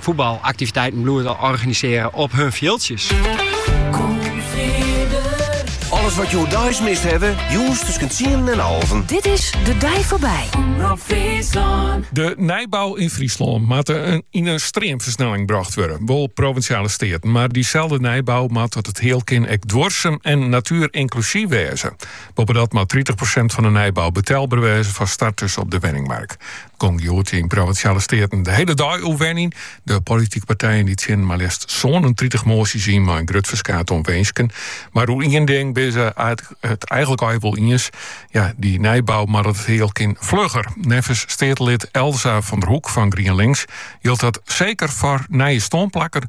Voetbalaktiviteiten bloeien te organiseren op hun fjildsjes. Alles wat jo deis mist hawwe, jûns tussen tsienen en alven. Dit is De Dei Foarby. De nijbouw in Fryslân moat yn in streamfersnelling brocht wurde, wol Provinsjale Steaten, mar dyselde nijbouw moat as it heal kin ek duorsum en natuerinklusyf wêze. Boppedat moat tritich prosint fan de nijbouw betelber wêze foar starters op de wenningmark. Gong hjoed yn Provinsjale Steaten de hiele dei oer wenjen. De politike partijen dy tsjinnen mar leafst 37 moasjes yn mei in grut ferskaat oan winsken. Mar oer ien ding binne se it eigentlik al wol iens. Ja, dy nijbou moat as it heal kin flugger. Neffens steatelid Elsa van der Hoek fan GrienLinks jildt dat seker foar nije stânplakken,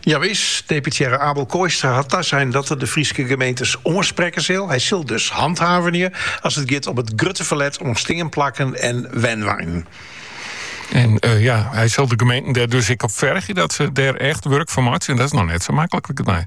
Jawis, deputearre Abel Kooistra hat tasein dat er de Fryske gemeentes oansprekke sil. Hy sil dus hanthavenje as it giet om it grutte ferlet oan steanplakken en wenweinen. En eh, ja, hy sil de gemeenten dêr dus ek op fergje dat se dêr echt wurk fan meitsje. En dat is noch net sa maklik, liket my.